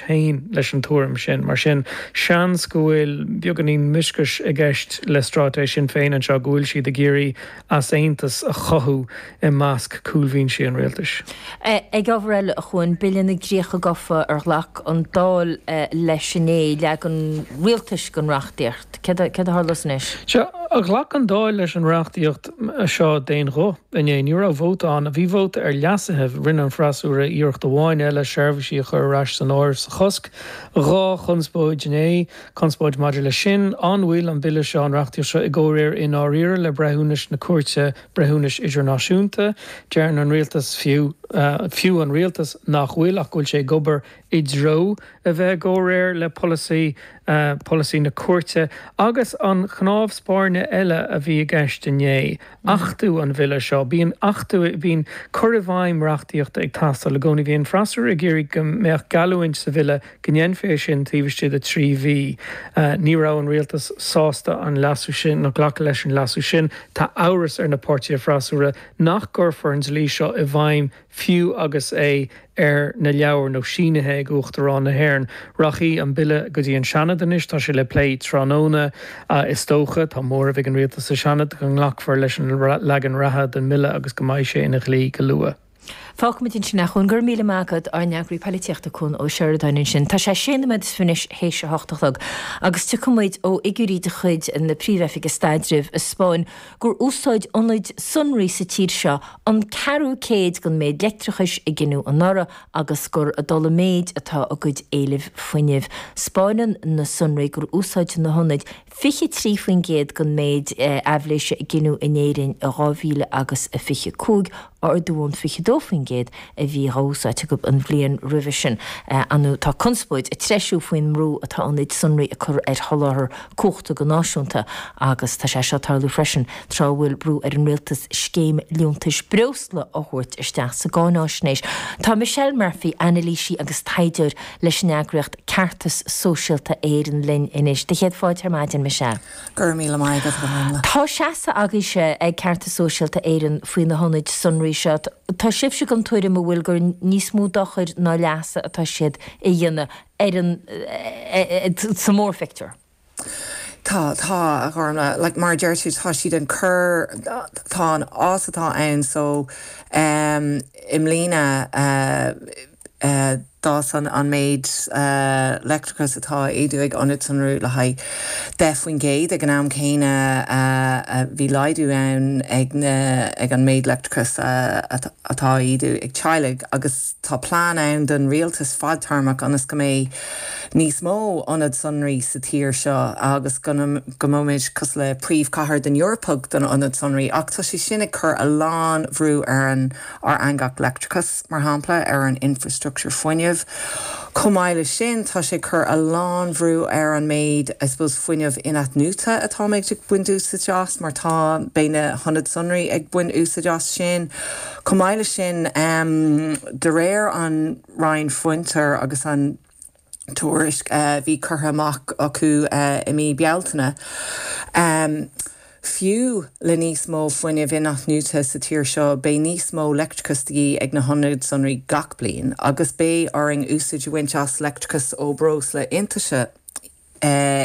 féin leis an tuairim sin. Mar sin, seans go bhfuil beagáinín mioscais i gceist le stráitéis Shinn Féin anseo, go bhfuil siad ag iarraidh easaontas a chothú i measc cúlbhínsí an rialtais. Ag ábhar eile, a Chuain, Bille na gcríocha gofa ar ghlac an Dáil leis inné, leagan an rialtais den reachtaíocht. Céard a tharlós anois? Sea, ghlac an Dáil leis an reachtaíocht seo d'aon ghuth. Inné, ní raibh vóta ann. Bhí vóta ar leasuithe. Rinne an freasúra iarracht amháin eile seirbhísí a chur ar ais san áireamh sa chosc. Dhá chonspóid inné. Conspóid maidir leis sin, an bhfuil an bille seo, an reachtaíocht seo, i gcomhréir i ndáiríre le breithiúnas na Cúirte Breithiúnais Idirnáisiúnta. Deireann an rialtas, fiú an rialtas, nach bhfuil, ach go bhfuil sé ag obair i dtreo a bheith i gcomhréir le polasaí, polasaí na cúirte, agus an cnámh spairne eile a bhí i gceist inné, achtú an Bhille seo. Bíonn achtú, bíonn cur i bhfeidhm reachtaíochta ag teastáil i gcónaí. Bhí an freasúra ag iarraidh go mbeadh geallúint sa Bhille go ndéanfaí é sin taobh istigh de thrí mhí. Ní raibh an Rialtas sásta an leasú sin, ná glacadh leis an leasú sin. Tá amhras ar na páirtithe freasúra nach gcuirfear an dlí seo i bhfeidhm Fiú agus é ar na leabhair, nó sínithe ag Uachtarán na hÉireann, rachaidh an bille go dtí an Seanad anois. Tá sé le plé tráthnóna, is dócha. Tá móramh ag an rialtas sa Seanad go nglacfar leis an leagan reatha den mbille agus go mbeidh sé ina dhlí go luath. Fágfaimid ansin é. Go raibh míle maith agat, ár nEagraí Poilitíochta, Cuan Ó Seireadáin ansin. Tá sé sé nóiméad anois théis a hocht a chlog, agus tuigimid ó fhigiúirí de chuid na Príomh-Oifige Staidrimh a 'spáin gur úsáid ionaid sonraí sa tír seo an ceathrú cuid den mhéid leictreachais a gineadh anuraidh agus gur ag dul i méid atá a gcuid éilimh fuinnimh. Spáineann na sonraí gur úsáid na hionaid 23% den mhéid aibhléise a gineadh in Éirinn i 2000 agus 25. ardú ón 22% a bhí á úsáid acu an bhliain roimhe sin. Anuraidh, tá conspóid ag treisiú faoin mbrú atá ionaid sonraí a cur ar sholáthar cumhachta go náisiúnta agus tá sé seo ag tarlú freisin tráth a bhfuil brú ar an rialtas scéim liúntais breosla a thabhairt isteach sa gcáináisnéis. Tá Michelle Murphy, anailísí agus taighdeoir leis an eagraíocht Ceartas Sóisialta Éireann linn anois. Céad fáilte ar maidin Michelle. Go raibh míle maith agat, a Ghormfhlaith. Tá seasamh agaibhse ag Ceartas Sóisialta Éireann faoi na hionaid sonraí seo. Tá sibhse den tuairim a bhfuil gur níos mó dochair ná leasa atá siad a dhéanamh ar an sa mórphictiúr. Tá, tá, a Ghormfhlaith, mar a deir tú, tá siad ag cur, tá an fás atá ann, so, em, i mbliana, eh, d'fhás an méid leictreachais atá a ídiú ag ionaid sonraí le haghaidh 10%, ag an am céanna bhí laghdú ann ag an méid leictreachais atá a ídiú ag teaghlaigh, agus tá plean ann don rialtas fadtéarmach ionas go mbeidh níos mó ionad sonraí sa tír seo agus go mbeimid cosúil le príomhchathair den Eoraip don ionad sonraí, ach tá sé sin ag cur a lán bhrú ar ár eangach leictreachais. mar shampla, ar an infreastruchtúr fuinnimh. Chomh maith leis sin, tá sé ag cur a lán bhrú ar an méid, I suppose, fuinneamh in-athnuaite atáimid ag baint úsaid as, mar tá, beidh na hionaid sonraí ag baint úsaid as sin. Chomh maith leis sin, de réir an Roinn Fiontair agus an. tuairisc a bhí curtha amach acu i mí Bealtaine. Fiú le níos mó fuinnimh in-athnuaite sa tír seo, beidh níos mó leictreachais de dhíth ag na hionaid sonraí gach bliain, agus beidh orainn úsaid a bhaint as leictreachas ó bhreoslaí iontaise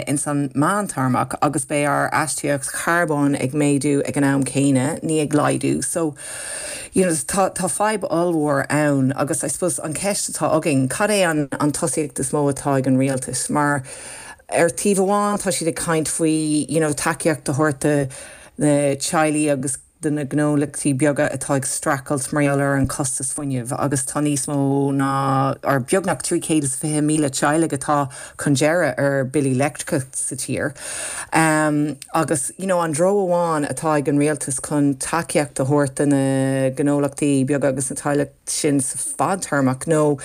ins an meántéarmach, agus beidh ár astaíochtaí charbóin ag méadú ag an am céanna, ní ag laghdú. So. you know tá tá fadhb ollmhór ann agus I suppose an ceist atá againn cad é an an tosaíocht is mó atá ag an rialtas mar ar taobh amháin tá siad ag caint faoi you know tacaíocht a thabhairt do na teaghlaigh agus do na gnólachtaí beaga atá ag streachailt mar gheall ar an costas fuinnimh agus tá níos mó ná nó beagnach 320,000 teaghlaigh atá chun deireadh ar bhillí leictreachais sa tír. Um, Agus, you know, an treo amháin atá ag an rialtas chun tacaíocht a thabhairt do na gnólachtaí beaga agus na teaghlaigh sin sa fadtéarmach nó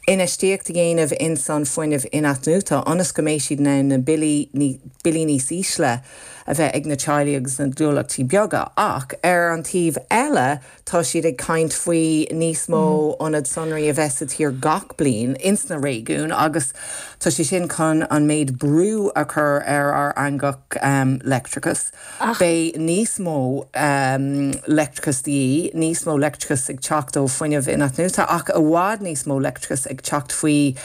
infheistíocht a dhéanamh ins an fuinneamh in-athnuaite ionas go mbeidh siad in ann na billí, ní, billí níos ísle a bheith ag na teaghlaigh agus na gnólachtaí beaga. Ach ar an taobh eile. Tá siad ag caint faoi níos mó ionad sonraí a bheith sa tír gach bliain ins na réigiúin agus tá sé sin chun an méid brú a chur ar ár eangach leictreachais. Beidh níos mó leictreachais de dhíth, níos mó leictreachais ag teacht ó fuinneamh inathnuaite, ach i bhfad níos mó leictreachais ag teacht faoi.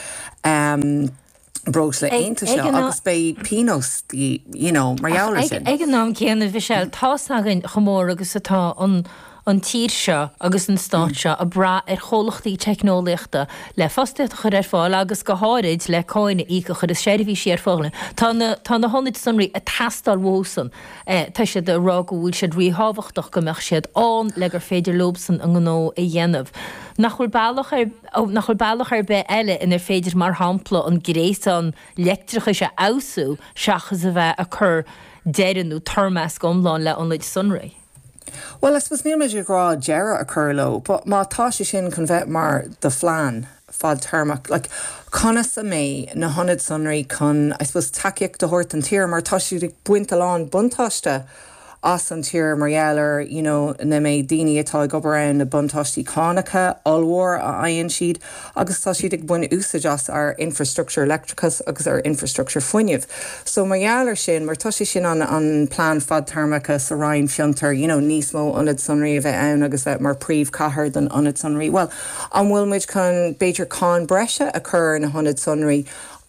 breosla iontaise agus beidh pionós you know mar gheall ar sin. Ag an am céanna Mhichelle, tá's againn chomh mór agus atá an an tír seo agus an stát seo ag brath ar chomhlachtaí teicneolaíochta le fostaíocht a chur ar fáil agus go háirid le cáin a íoc a chuireas seirbhísí ar fáil. Tá na tá na hionaid sonraí ag teastáil uathusan. Tá siad ag rá go bhfuil siad ríthábhachtach go mbeadh siad ann le gur féidir leosan a ngnó a dhéanamh. Nach bhfuil bealach ar Ó nach bhfuil bealach ar bith eile inar féidir, mar shampla, an gréasán leictreachais a fheabhsú seachas a bheith ag cur deireadh nó toirmeasc iomlán le hionaid sonraí? Bhuel, I suppose, níl muid ag rá deireadh a cur leo, but má tá sé sin chun bheith mar do phlean fadtéarmach, like, conas a mbeidh na hionaid sonraí chun, I suppose, tacaíocht a thabhairt don tír, mar tá siad ag baint a lán buntáiste as. as an tír mar gheall ar you know ní mbeidh daoine atá ag obair ann na buntáistí cánacha ollmhór a fhaigheann siad agus tá siad ag baint úsáid as ár infreastructúr leictreachais agus ár infreastructúr fuinnimh so mar gheall ar sin mar tá sé sin an an plean fadtéarmacha sa Roinn Fiontar you know níos mó ionad sonraí a bheith ann agus bheith mar príomhcathair don ionad sonraí bhuel an bhfuil muid chun b'fhéidir cáin breise a chur ar na hionad sonraí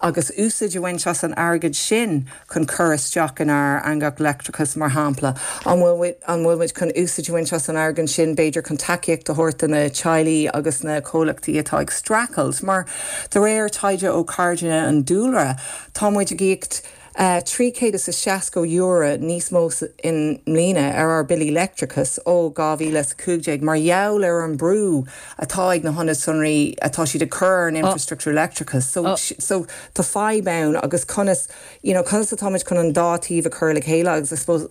agus úsaid a bhaint as an airgead sin chun cur isteach inár eangach leictreachais, mar shampla? An bhfuil muid chun úsáid a bhaint as an airgead sin, b'fhéidir, chun tacaíocht a thabhairt do na teaghlaigh agus na comhlachtaí atá ag streachailt? Mar, de réir taighde ó Cairde an Dúlra, tá muid ag íoc €360 níos mó i mbliana ar ár billí leictreachais ó 2015 mar gheall ar an brú atá ag na hionaid sonraí atá siad ag cur ar an infrastructúr leictreachais. So, tá fadhb ann agus conas. you know conas atá muid chun an dá taobh a chur le chéile agus I suppose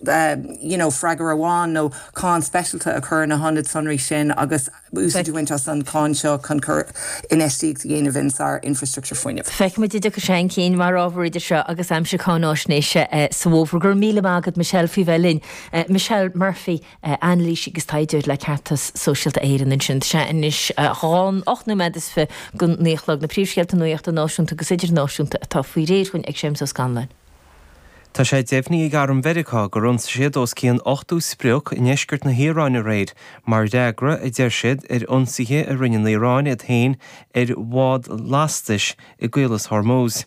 you know freagair amháin nó cáin speisialta a chur ar na hionaid sonraí sin agus úsáid a bhaint as an cháin seo chun chun infheistíocht a dhéanamh insár infrastructúr fuinnimh. Feicfidh muid an dtiocfaidh sé chun cinn mar ábhar idir seo agus aimsir cáinaisnéise sa bhfómhar. Go raibh míle maith agat Michelle faoi bheith linn. Michelle Murphy. Anailísí agus taighdeoir le Ceartas Sóisialta Éireann ansin. Tá sé anois dhá nó ocht nóiméad is fiche go dtí naoi a chlog. Na príomhscéalta nuachta náisiúnta agus idirnáisiúnta atá faoi réir dhúinn ag Séamus Ó Scanláin. Tá sé deimhnithe ag arm Mheiriceá gur ionsaigh siad os cionn 80 sprioc i ndeisceart na hIaráine aréir mar fhreagra, a deir siad, ar ionsaithe a rinne an Iaráin iad féin ar bhád lastais i gCaolas Hormuz.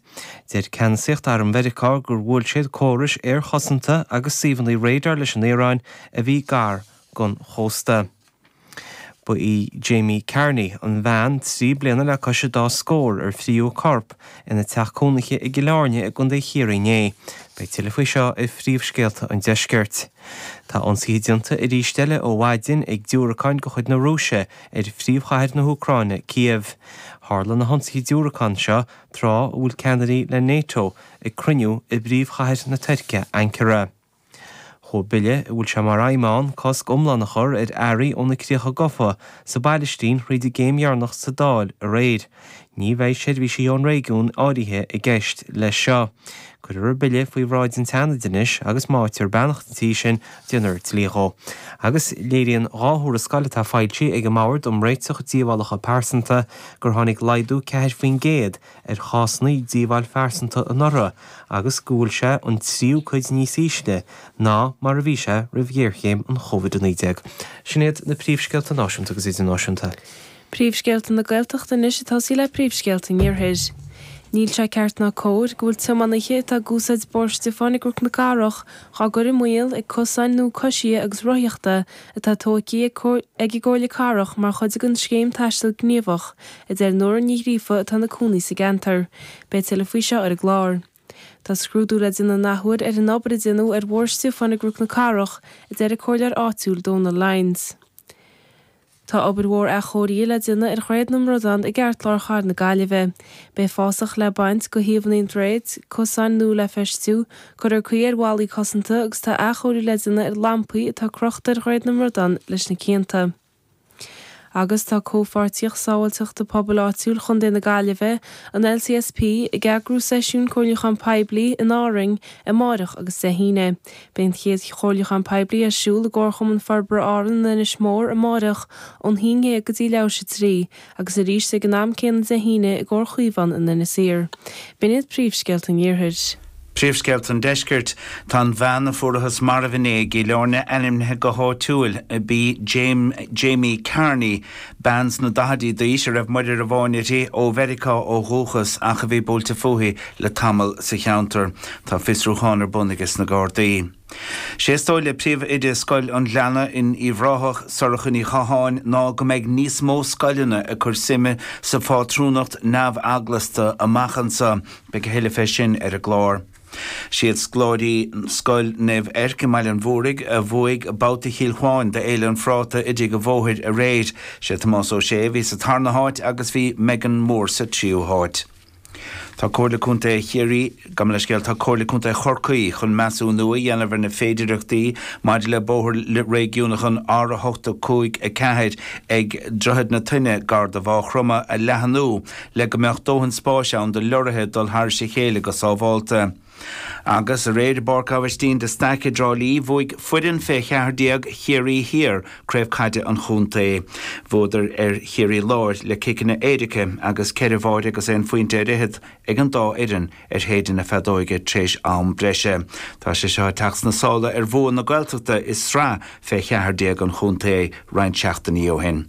Deir ceannasaíocht arm Mheiriceá gur bhuail siad córais aerchosanta agus suíomhanna radar leis an Iaráin a bhí gar don chósta. Ba í Jamey Carney, an bhean trí bliana le cois a dá scór ar frítheadh a corp ina teach cónaithe i gCill Airne i gcontae Chiarraí inné. Beidh tuilleadh faoi seo ar phríomhscéalta an deiscirt. Tá ionsaithe déanta arís eile ó mhaidin ag diúracáin de chuid na Rúise ar phríomhchathair na hÚcráine, Kyiv. Tharla na hionsaithe diúracán seo tráth a bhfuil ceannairí le Nato ag cruinniú i bpríomhchathair na Tuirce, Ankara. Chuaigh bille a bhfuil sé mar aidhm ann cosc iomlán a chur ar earraí ó na críocha gofa sa bPailistín thríd an gcéim dheireanach sa Dáil aréir, Ní bheidh seirbhísí ón réigiún áirithe i gceist leis seo. Cuirfear an bille faoi bhráid an tSeanaid anois agus má fhaightear beannacht an Tí sin déanfar dlí dhó. Agus léiríonn dhá thuarascáil atá foilsithe ag an mBord um Réiteach Díobhálacha Pearsanta gur tháinig laghdú ceathair faoin gcéad ar chásanna díobháil phearsanta anuraidh agus go bhfuil sé an tríú cuid níos ísle ná mar a bhí sé roimh ghéarchéim an Covid-19. Sin iad na príomhscéalta náisiúnta agus idirnáisiúnta. Príomhscéalta na Gaeltachta anois ag tosaí le príomhscéalta an iarthair. Níl sé ceart ná cóir go bhfuil tiománaithe atá ag úsáid Bóthar Stiofáin i gCnoc na Cathrach dhá gcur i mbaol ag cosáin nua coisithe agus rothaíochta atá tógtha ag an gComhairle Cathrach mar chuid den Scéim Taistil Gníomhach, a deir Nóra Ní Ghríofa atá ina cónaí sa gceantar. Beidh tuilleadh faoi seo ar an gclár. Tá scrúdú le déanamh an athuair ar an obair a déanadh ar Bhóthar Stiofáin i gCnoc na Cathrach, a deir an Comhairleoir áitiúil Dónal Lyons. Tá obair mhór athchóirithe le déanamh ar Dhroichead na mBradán i gceartlár chathair na Gaillimhe. Beidh fásach le baint, de thaobhanna an droichid, cosáin nua le feistiú, cuirfear caoi ar bhallaí cosanta agus tá athchóiriú le déanamh ar lampaí atá crochta ar Dhroichead na mBradán leis na cianta. Agus tá Comhpháirtíocht Sábháilteachta Pobail Áitiúil Chontae na Gaillimhe, an LCSP, ag eagrú seisiún comhairliúcháin poiblí in Árainn amárach agus Dé hAoine, Beidh an chéad chomhairliúchán poiblí ar siúl i gComharchumann Forbartha Árann in Inis Mór amárach ón haon déag go dtí leath tar éis a trí agus arís ag an am céanna Dé hAoine i gComhar Chaomhán in Inis Oírr. B'in iad príomhscéalta an Iarthair. Príomhscéalta an Deiscirt. Tá an bhean a fuarathas marbh inné i gCill Áirne ainmnithe go háitiúil. B'í Jamie Carney Bean sna daichidí d'aois a raibh muirir amháin uirthi, ó Mheiriceá ó dhúchas ach a bhí buailte fúithi le tamall sa cheantar. Tá fiosrúchán ar bun aige sna Gardaí. Sé is dóigh le príomh-oide Scoil an Ghleanna in Uíbh Ráthach, Sorcha Ní Chatháin, ná go mbeidh níos mó scoileanna ag cur suime sa phátrúnacht neamheaglasta amach anso. Beidh a thuilleadh fé sin ar an gclár. Siad scoláirí Scoil Naomh Eirc i mBaile an Mhúraigh a bhuaigh Babhta Chill Chuáin d'Fhéile an Phráta i dTigh a' Bhóthair aréir. Sé Tomás Ó Sé a bhí sa tarna háit agus bhí Megan Moore sa tríú háit. Tá Comhairle Contae Chiarraí, gabh mo leithscéal, tá Comhairle Contae Chorcaí chun measúnú a dhéanamh ar na féidireachtaí maidir le bóthar réigiúnach an R8 5 4 ag Droichead na Toinne gar do Mhá Chromtha a leathanú le go mbeadh dóthain spáis ann do leoraithe dul thairis a chéile go sábhálta. Agus aréir i bPáirc Aibhistín de Staic i dTrá Lí, bhuaigh foireann fé 14 Chiarraí Thiar craobh caide an chontae. Bhuadar ar Chiarraí Láir le ciceanna éirice agus ceithre bháire agus aon phointe ar fhichead ag an dá fhoireann ar shéideadh na feadóige tréis am breise. Tá sé seo ag teacht sna sála ar bhua na Gaeltachta i sraith fé cheathar déag an chontae roinnt seachtainí ó shin.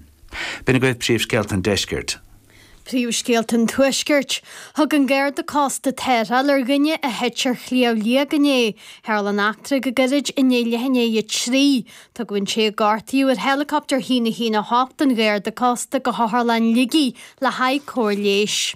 B'in agaibh príomhscéalta an deiscirt. Príomhscéalta an tuaiscirt. Thug an Garda Cósta tarrtháil ar dhuine a thit ar Shliabh Liag inné. Tharla an eachtra go gairid i ndiaidh leath i ndiaidh a 3. Tugadh an té a gortaíodh ar heileacaptar 1 1 8 an Gharda Cósta go hOtharlann Shligigh le haghaidh cóir leighis.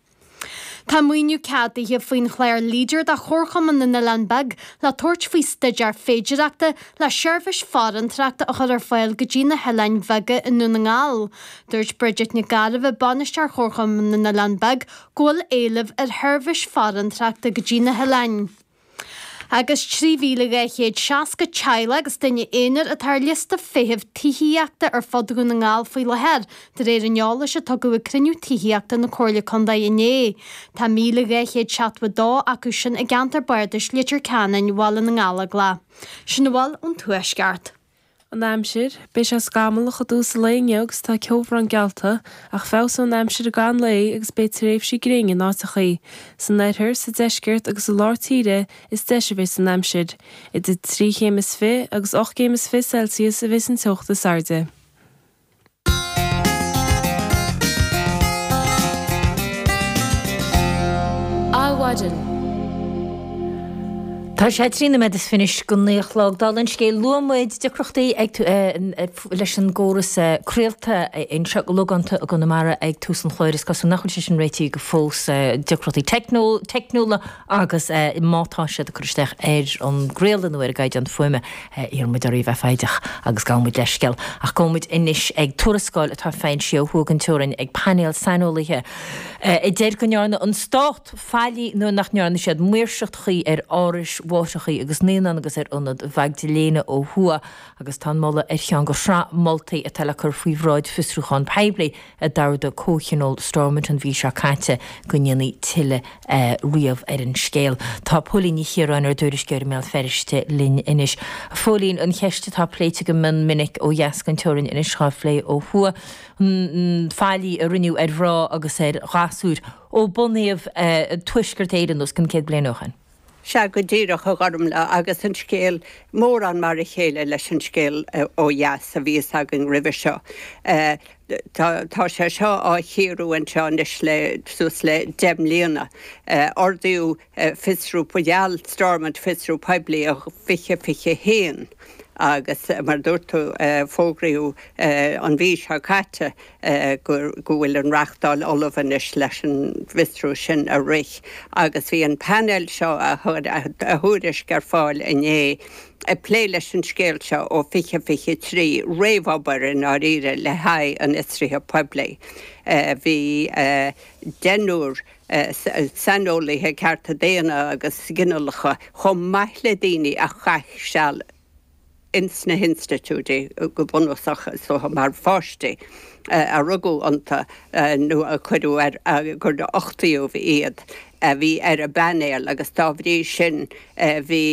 Tá maoiniú ceadaithe faoin chlár Leader do Chomharchumann na nOileán Beag le tabhairt faoi staidéar féidireachta le seirbhís farantóireachta a chur ar fáil go dtí na hoileáin bheaga i nDún na nGall. Dúirt Bridget Nic Gairbheith, Bainisteoir Chomharchumann na nOileán Beag, go bhfuil éileamh ar sheirbhís farantóireachta go dtí na hoileáin. Agus 3,260 teaghlach agus duine aonair atá ar liosta feithimh tithíochta ar fud Dhún na nGall faoi láthair, de réir an eolais a tugadh ag cruinniú tithíochta na Comhairle Contae inné, tá 1,272 acu sin i gceantar bardais Leitir Ceanainn, Bhaile na nGallóglach. Sin a bhfuil ón Tuaisceart. An aimsir, Beidh sé scamallach i dtús an lae inniu agus tá ceobhrán geallta, ach feabhsóidh an aimsir i gcaitheamh an lae agus beidh tréimhsí gréine in áiteachaí. San oirthear, sa deisceart agus i lár tíre is deise a bheidh an aimsir. Idir trí chéim is fiche agus ocht gcéim is fiche Celsius a bheas an teocht is airde. Adhmhaidin. Tá sé trí nóiméad is fiche anois don naoi a chlog. Dála an scéil, luaigh muid deacrachtaí ag tú, eh, eh, leis an gcóras, eh, craolta anseo go logánta i gConamara ag tús an chláir. Is cosúil nach bhfuil sé sin réitithe go fós, eh, deacrachtaí teicniú- teicniúla Agus má tá siad ag cur isteach ar an gcraoladh nó ar an gcaighdeán fuaime, iarrann muid oraibh a bheith foighdeach agus gabhann muid leithscéal, ach gabhfaidh muid anois ag tuarascáil atá foilsithe ó thuaidh den teorainn ag painéal saineolaithe a deir go ndearna an stát faillí nuair nach ndearna siad maoirseacht chuí ar árais mháithreacha agus naíonán agus ar Ionad Mhaigdiléana ó thuaidh agus tá an moladh ar cheann de shraith moltaí atá le cur faoi bhráid fiosrúchán poiblí. a d'ordaigh comhthionól Stormont an mhí seo caite go ndéanfaí tuilleadh ríomh ar an scéal. Tá Póilín Ní Chiaráin, ár dtuairisceoir i mBéal Feirste, linn anois. A Phóilín, an cheist atá pléite go mion minic ó dheas den teorainn anois á phlé ó thuaidh, an faillí a rinneadh ar mhná agus ar ghasúir ó bunaíodh Tuaisceart Éireann os cionn céad bliain ó shin. Sea, go díreach, a Ghormlaith, agus an scéal mórán mar a chéile leis an scéal ó dheas a bhí a fhios againn roimhe seo. Tá sé seo á chíoradh anseo anois le suas le deich mbliana. Ordaíodh fiosrú, bhuel gheall Stormont fiosrú poiblí in 2021 agus, mar a dúirt tú, fógraíodh an mhí seo caite, go bhfuil an reachtáil ullamh anois leis an bhfiosrú sin a rith agus bhí an painéal seo, a chuir a thuairisc ar fáil inné, ag plé leis an scéal seo ó 2023, réamhobair i ndáiríre le haghaidh an fhiosraithe phoiblí. Bhí deichniúr saineolaithe cearta daonna agus ginealacha, chomh maith le daoine a chaith seal, ins na hinstitiúidí, go bunúsach, is dócha, mar pháistí a rugadh iontu nó a cuireadh ar, gur uchtaíodh iad, a bhí ar an bpainéal agus dá bhrí sin bhí.